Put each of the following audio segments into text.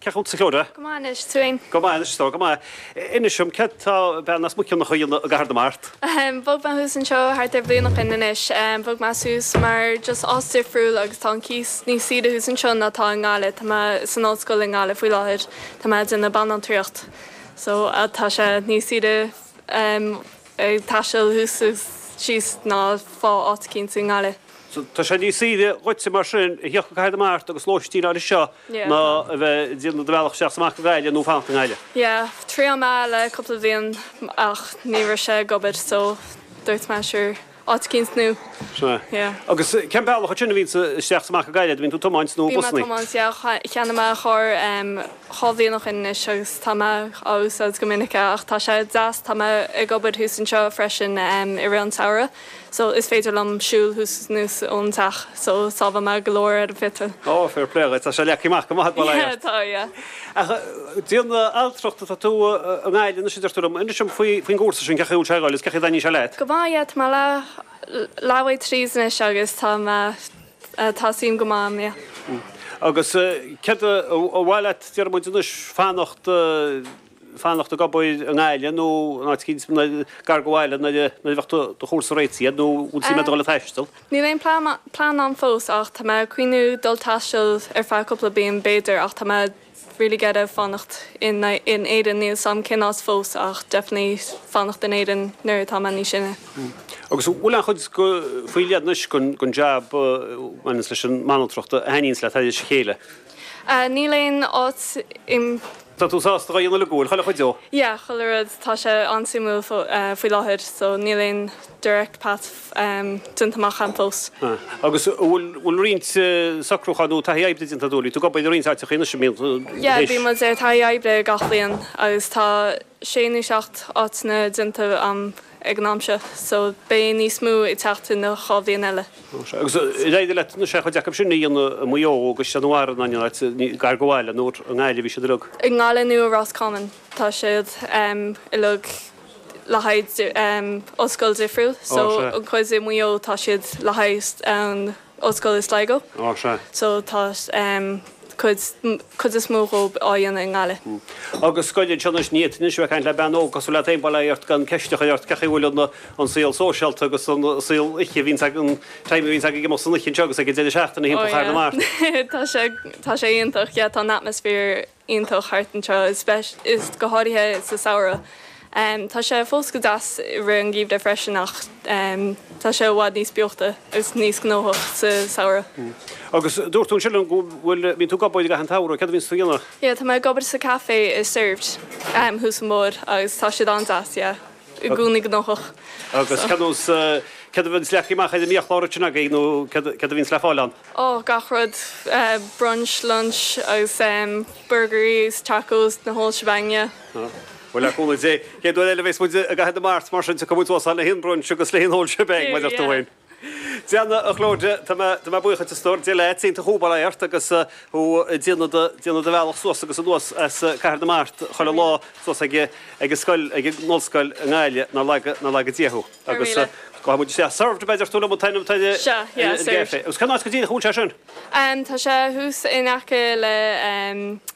Cén chaoi a bhfuil tú? Go maith anois, tú fhéin? Go maith anois, go maith. Inis dom, céard tá bean as Muiceanach a dhéanamh i gCathair na Mart? Ahem, bhog mé suas anseo thart ar bhliain ó shin anois. Bhog mé suas mar just áit difriúil agus tá an cíos níos saoire thuas anseo ná atá i nGaillimh. Tá mé san ollscoil i nGaillimh faoi láthair, tá mé ag déanamh banaltraíocht, so tá sé níos saoire. ag taisteal suas is síos ná fáil áit eicínt i nGaillimh. So, tá sé níos saoire dhuitse mar sin a thíocht go Cathair na Mart agus lóistín a fháil anseo Yeah, ná tá. a bheith ag déanamh do bhealach isteach is amach go Gaillimh ná fanacht i nGaillimh. Yeah, thriail mé le cúpla bliain ach ní raibh sé ag obair so dúirt mé sure. áit eicínt nua yeah. Agus cén bealach ansin a bhíonns tú isteach 's amach go Gaillimh an mbíonn tú ag tiomáint nó Bím busannaí? ag tiomáint yeah cheannaigh mé carr em dhá bhliain ó shin anois agus tá mé á úsáid go minic é ach tá sé deas tá mé ag obair thuas anseo freisin em i rith an tsamhraidh so is féidir liom siúl suas anuas ón teach so sábhálann mé go leor ar an pheitril. Ó fair play dhuit tá sé leagtha amach go maith agat ar a laghad. Yeah tá yeah. Ach an bhanaltracht, tá tú i nGaillimh anois a deir tú liom. Inis dom faoin gcúrsa sin, cén chaoi a bhfuil sé ag goil is cén chaoi a dtaitníonn sé leat? Go maith, yeah, tá mé leath bealaigh tríd anois agus tá mé, tá suim go maith ann, yeah. Agus céard ab áil leat, déarfaidh muid anois, fanacht, fanacht ag obair i nGaillimh nó in áit éigin gar do bhaile nuair a bheas do chúrsa réitithe nó an bhfuil suim agat a dhul ag taisteal? Níl aon plean ann fós ach tá mé ag cuimhniú dul ag taisteal ar feadh cúpla bliain b'fhéidir ach tá mé really ag iarraidh fanacht in Éirinn, níl 's 'am cén áit fós ach definitely fanacht in Éirinn nuair atá mé níos sine. Agus bhfuil aon chuid faoi leith anois den jab a bhaineanns leis an mbanaltracht a thaitníonns leat thar a chéile? Níl aon áit a'm. Tá tú sásta a dhéanamh le chuile chuid dhó. Yeah, chuile rud. Tá sé an-suimiúil faoi láthair so níl aon direct path déanta amach a'm fós. Ah. Agus an bhfuil, bhfuil roinnt socrúcháin nó taithí oibre déanta agat, tú ag obair i roinnt áiteacha anois an mbíonn? Yeah, bíonn muid ar taithí oibre gach bliain agus tá sé nó seacht áiteanna déanta a'm ag an am seo so beidh níos mó ag teacht sa dhá bhliain eile. Agus ar éirigh leat aon chuid acu sin a dhéanamh i Maigh Eo i gCaisleán an Bharraigh nó in aon áit gar do bhaile nó i nGaillimh a bhí siad uilig? I nGaillimh nó i Ros Comáin tá siad uilig le haghaidh ollscoil difriúil so an chuid i Maigh Eo tá siad le haghaidh an, Ollscoil i Sligo. Ó, sea. So tá cuid, cuid is mó dhób á dhéanamh i nGaillimh. Uhm. Agus scoil anseo anois, ní fhéadfainn anois a bheith ag caint le bean óg cosúil leat bail ó Dhia ort gan ceist a chur ort, cén chaoi a bhfuil an, an saol sóisialta agus an saol oíche a bhíonns ag, an time a bhíonns agaibh ag imeacht san oíche anseo agus ag an deireadh seachtaine Ó, timpeall Chathair na yeah. Mart? Tá sé, tá sé iontach, yeah, tá an atmosphere. iontach thart anseo, is go háirithe sa samhradh. Tá sé fós go deas i rith an gheimhridh freisin ach tá sé i bhfad níos beochta agus níos gnóthach sa samhradh. Agus dúirt tú ansin liom go bhfuil, bíonn tú ag obair i gcaitheamh an tsamhraidh, céard a bhíonns tú a dhéanamh? Yeah, tá mé ag obair sa café i Servd thuas an bóthar agus tá siad an-deas, yeah. i gcónaí gnóthach. Agus cén nós, céard a bhíonns le fáil amach ar an mbiachlár ansin agaibh nó céard, céard a bhíonns le fáil ann? Ó, gach rud, brunch, lunch agus ehm burgairí agus tacos, the whole shebang, yeah. Ó, bhuel le cúnamh Dé, an chéad uair eile a bhéas muid i gCathair na Mart mar sin tiocfaidh muid sall le haghaidh an brunch agus le haghaidh an whole shebang, mar a dúirt tú. Déanadh, a Chlodagh, tá mé, tá mé buíoch díot, a stór, Dia leat, iontach thú, go mbeidh an t-ádh ort agus thú ag déanamh do, déanamh do bhealach suas agus anuas as Cathair na Mart chuile lá Faraor. suas ag, ag an scoil, ag an ollscoil i nGaillimh, nár laga, nár laga Dia thú. Faraor Agus míle. gabhfaidh muid isteach, Servd, a dúirt tú liom an t-ainm, t-ainm, eh, Sea, yeah, an Servd. gcaifé. Agus cén áit go díreach a bhfuil sé sin? Em, tá sé thuas in aice le, em,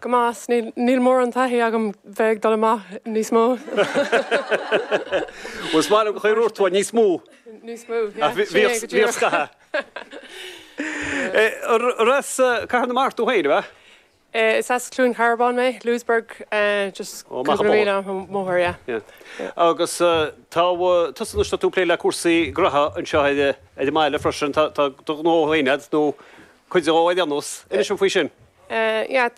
Cumas, Níl mórán taithí agam bheith ag dul amach níos mó. Bhuel, is maith liom gur chuir tú uaidh níos mó. Níos mó, yeah. Bhíos scaitheamh. Ar as Cathair na Mart tú féin, ab ea? Is as Cluain Carbán mé, Louisburgh, just cúpla míle ón gCathair, yeah. Agus tá tusa anois tá tú ag plé le cúrsaí graithe anseo ar an mbaile freisin, tá do ghnó féin agat nó cuid de ghnó ar aon nós. Inis dom faoi sin. Yeah.